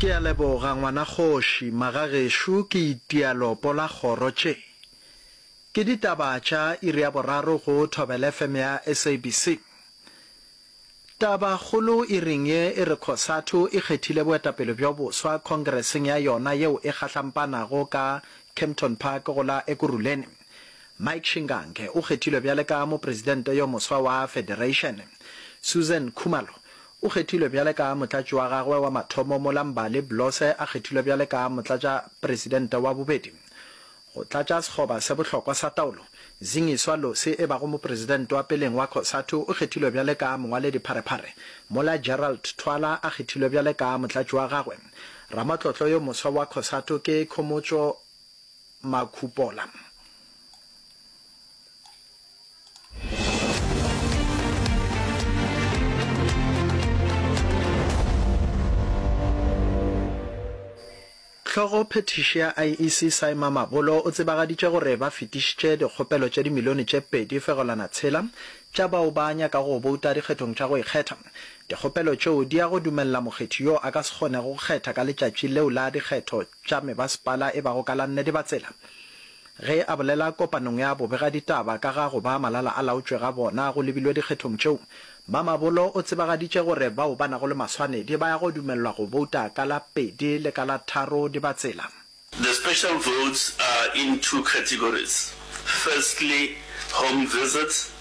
Ke a leboga ngwana kgoši, magagešo ke itia lopo la kgoro tše. Ke ditaba tša iri ya boraro go Thobel FM ya SABC. Taba kgolo iring ye e re Cosatu e kgethile boetapele bjo boswa khongreseng ya yona yeo e gahlampanago ka Kempton Park go la Ekurhuleni. Mike Shingange o kgethilwe bjale ka mopresidente yo moswa wa federation. Susan Khumalo O kgethilwe bjale ka motlatši wa gagwe wa mathomo mola Mbali Blose a kgethilwe bjale ka motlatšapresidente wa bobedi. Go tlatša sekgoba se bohlokwa sa taolo, Zingiswa Losi e bago mopresidente wa peleng wa Cosatu o kgethilwe bjale ka mongwaledipharephare mola Gerald Thwala a kgethilwe bjale ka motlatši wa gagwe. Ramatlotlo yo moswa wa Cosatu ke Khomotso Makhupola. Hlogo phethiši ya IEC Saima Mabolo o tsebagaditše gore ba fetišitše dikgopelo tše dimilione tše pedi fegelwana tshela tša bao ba nyaka go bouta dikgethong tša go ikgetha. Dikgopelo tšeo di ya go dumelela mokgethi yo a ka se kgonego go kgetha ka letšatši leo la dikgetho tša mebasepala e bago ka la nnete ba tsela Ge a bolela kopanong ya bobegaditaba ka ga go ba malala-a-laotšwe ga bona go lebilwe dikgethong tšeo, Mamabolo o tsebagaditše gore bao ba nago le maswanedi ba ya go dumelelwa go bouta ka la pedi le ka la tharo di ba tsela. The special votes are in two categories, firstly home visits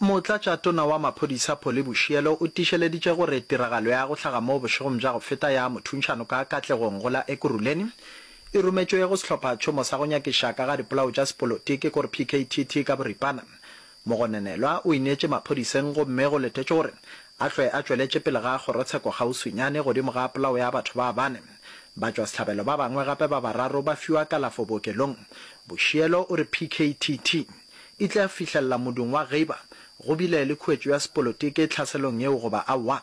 Motlatšatona wa Maphodisa Polly Bushielo o tiišeleditše gore tiragalo ya go hlaga moo bošegong bja go feta ya mothuntšhano ka Katlegong go la Ekurhuleni e rometšwe go sehlophatšhomo sa go nyakiša ka ga dipolao tša sepolotiki gore PKTT ka boripana Mogononelwa o ineetše maphodiseng gomme go letetšwe gore a hlwe a tšweletše pele ga kgorotsheko kgauswinyane godimo ga polao ya batho ba bane. Batšwasehlabelo ba bangwe gape ba bararo ba fiwa kalafo bookelong. Bošielo o re PKTT e tla fihlelela modumo wa Geiba go bile le khuetšo ya sepolotiki tlhaselong yeo goba aowa.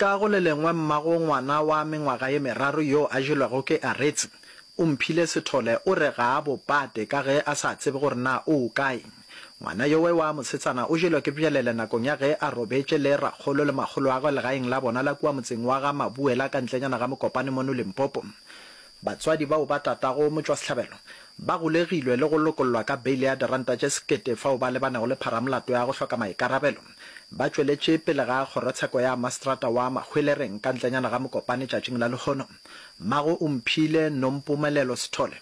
Ka go le lengwe mmago ngwana wa mengwaga ye meraro yo a jelwego ke Aretse, o mphile sethole o re ga a bo pate ka ge a sa tsebe gore na o o kae. Ngwana yowe wa mosetsana o jelwe ke bjalele nakong ya ge a robetše le rakgolo le makgoloagwe legaeng la bona la kua motseng wa ga Mabuela ka ntlenyana ga Mokopane mono Limpopo. Batswadi bao ba tatago motšwasehlabelo ba golegilwe le go lokollwa ka beile ya diranta tše sekete fao ba lebanego le pharamolato ya go hloka maikarabelo. Ba tšweletše pele ga kgorotsheko ya maseterata wa Mahwelereng ka ntlenyana ga Mokopane tšatšing la lehono. Mmago o mphile Nompumelelo Sithole.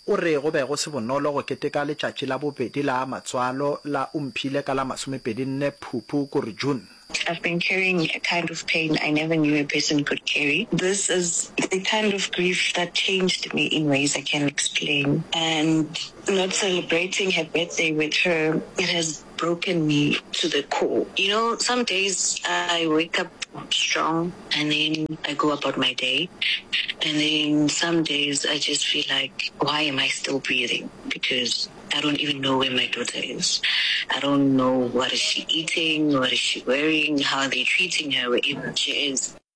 O re go be go se bonolo go keteka letšatši la bobedi la matswalo la o mphile ka la masomepedi nne Phupu ko re June. I've been carrying a kind of pain I never knew a person could carry. This is the kind of grief that changed me in ways I can't explain and not celebrating her birthday with her it has broken me to the core you know some days I wake up strong and then I go about my day and then some days I just feel like why am I still breathing because I don't even know where my daughter is I don't know what is she eating what is she wearing how are they treating her wherever she is